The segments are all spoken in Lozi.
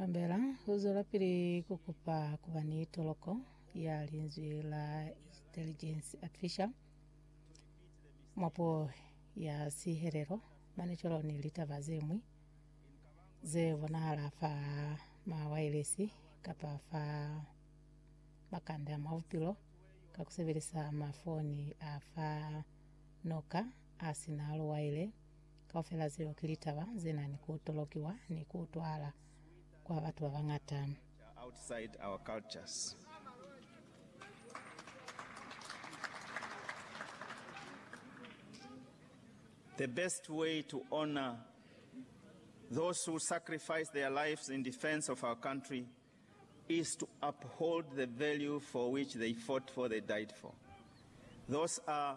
Kambela u zwelapili ku kupa ku ba ni toloko ya linzwi la Intelligence Artificial mwa puo ya sihelelo mane cwalo ni litaba ze ñwi ze bonahala fa mawaelesi kapa fa makanda mwa bupilo ka ku sebelisa mafoni a fa noka a si na luwaile Kaufela zeo ki litaba ze na ni ku tolokiwa ni ku utwala kwa batu ba bañata. outside our cultures. The best way to honor those who sacrifice their lives in defense of our country is to uphold the value for which they fought for, they died for. Those are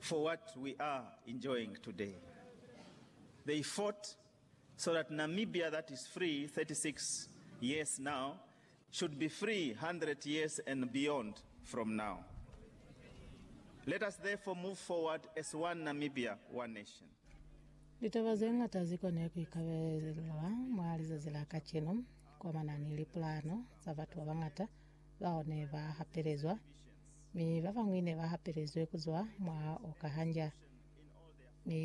for what we are enjoying today. They fought so that Namibia that is free 36 years now should be free 100 years and beyond from now. Let us therefore move forward as one Namibia, one nation. Litaba ze ñata zi kone ku ikabelelwa mwa lizazi la kacenu, kwa manani lipulano za batu ba bañata, bao ne ba hapelezwa, mi ba bañwi ne ba hapelezwe ku zwa mwa oka hanja. Mi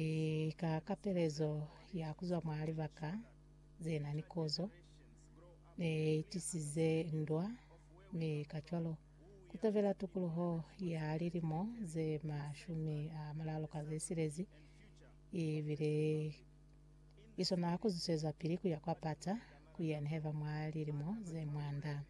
ka kapelezo ya ku zwa mwa libaka ze na ni kozo, ne i tisize ndwa, mi kacwalo, ku tobela tukuluho ya lilimo ze mashumi a mulalu ka ze silezi, i bile i swana ku zusezwapili ku ya kwa Pata, ku ya neheva mwa lilimo ze mwanda.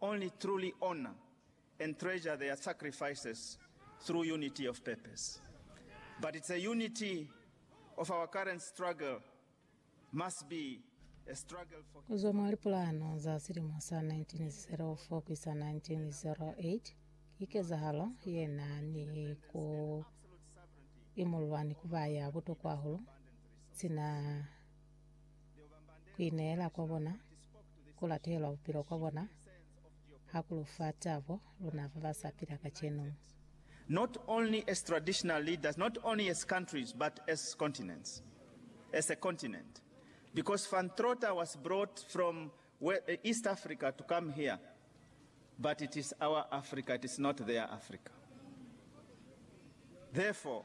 Only truly honor and treasure their sacrifices through unity of purpose. But the unity of our current struggle must be a struggle for. Kuzwa mwa lipulano za silimo sa 1904 kuisa 1908, ki kezahalo ye na ni ku imulwa ni ku ba ya butokwa hahulu sina ku ineela kwa bona, ku latelwa bupilo kwa bona ha ku lu fa tabo luna ba ba sa pila kacenu. not only as traditional leaders, not only as countries, but as continents, as a continent, because Van Trotter was brought from East Africa to come here, but it is our Africa, it is not their Africa, therefore,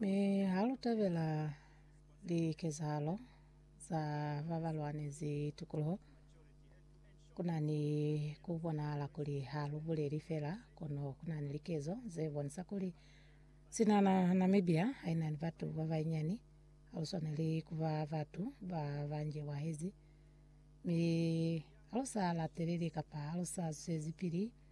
Mi ha lu tabela likezahalo za ba ba lwanezi tikoloho, ku na ni ku bonahala kuli ha lu buleli fela, kono ku na ni likezo ze bonisa kuli sina na Namibia ha i na ni batu ba banyinyani, ha lu swaneli ku ba batu ba ba njewahezi mi ha lu sa lateleli kapa ha lu sa zwezipili